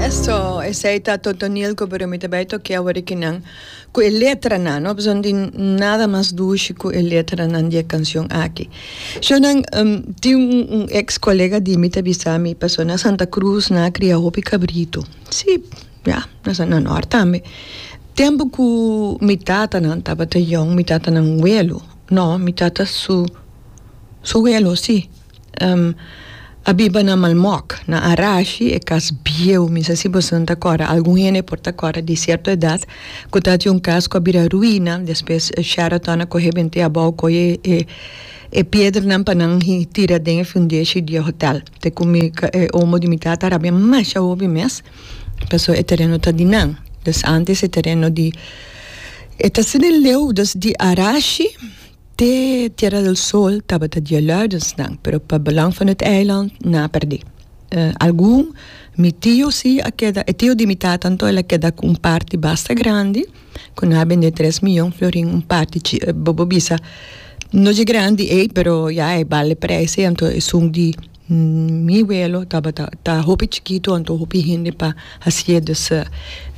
Eso, esey ta Totoniel cu pero mi ta bay toke awor aki nan cu e letranan, no pasobra no tin nada mas dushi cu e letranan di e cancion aki. Shownan, tin un ex colega di mi ta bisa mi pasobra na Santa Cruz nan a cria hopi cabrito, si, ya, na sa na Nort tambe. Tempo cu mi tatanan tabata yong, mi tatanan welo, no, mi tata su welo, si. a biba na Malmok, na Arashi, e kas bieu, mi sa si boso no ta kòrda, algun hende por ta kòrda di sierto edat, ku ta tin un kas ku a bira ruina, despues Sheraton a kohe bent'é abou, kohe e e piedernan pa nan tira den e fundeshi di e hotèl, te ku mi e omo di mi tata a rabia masha hopi mes, pasó e tereno ta di nan, dus antes e tereno di, e ta ser den leu, dus di Arashi. Te Tierra del Sol tabata di e Luidensnan, pero pa Belang van het Eiland nan a perdé. Algun, mi tio sí a keda, e tio di mi tata anto el a keda ku un parti basta grandi, ku nan a bendé tres miyon florin un parti chi, bobo bisa no dje grandi ei pero ya e bal e preis ei anto esun di Mi welo tabata ta hopi chikitu anto hopi hende pa hacier de sè.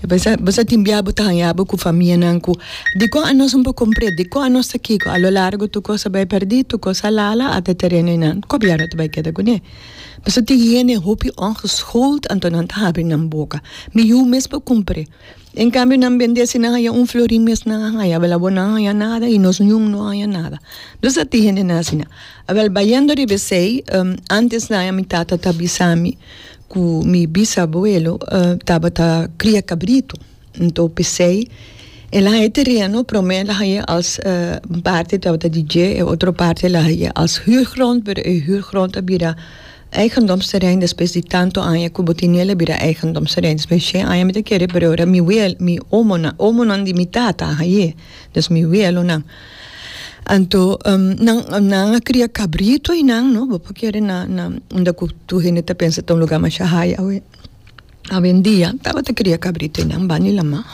Bo sa tin bia bo ta haña bo cu famianan cu dicon anos no por compre, dicon anos ta kico. A lo largo tur cos ta bay perdi, tur cos a lala ata tereno y nan. Cobier no ta bay keda cu ne. Bo sa tin hende hopi ongeschoold anto nan ta habri nan boca. Mi yu mes por compre. En cambio nan bende si nan haya un flori mes nan a haya avel abo nan haya nada y nos ñum no haya nada nos a tin hendenan asina avel bayendo riba esey antes de aña mi tata ta bisami cu mi bisabuelo tabata cria cabrito enton pesey el a haya tereno prome el a haya als un parte tabata di dje y otro parte el a haya als huurgrond pero e huurgrond a bira Eigendomsterrein despues di tanto aña ku bo tiniel a bira eigendomsterrein. Despues di shen aña mi ta kere pero ora mi weel mi omonan omonan di mi tata a haye dus mi weelonan anto nan a kria kabrito y nan no bo por kere na na unda ku tur hende ta pensa ta un lugar masha haya awe. Awendia tabata cria cabrito y nan bani lama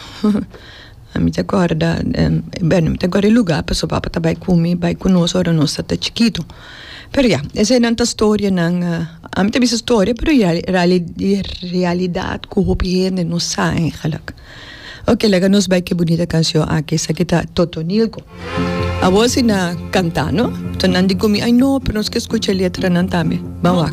a mi ta corda bueno mi ta corda e lugar pasobra e papa ta bay cu mi bay cu nos ora nos tata chikito pero ya eseinan ta storianan a mi ta bisa storia pero ya e realidad cu hopi hende no sa eigenlijk oke laga nos bay cu e bunita cancion aki esaki ta Totonilco awoz y na canta no so nan di cu mi ay no pero nos ke scucha e letranan tambe bawak.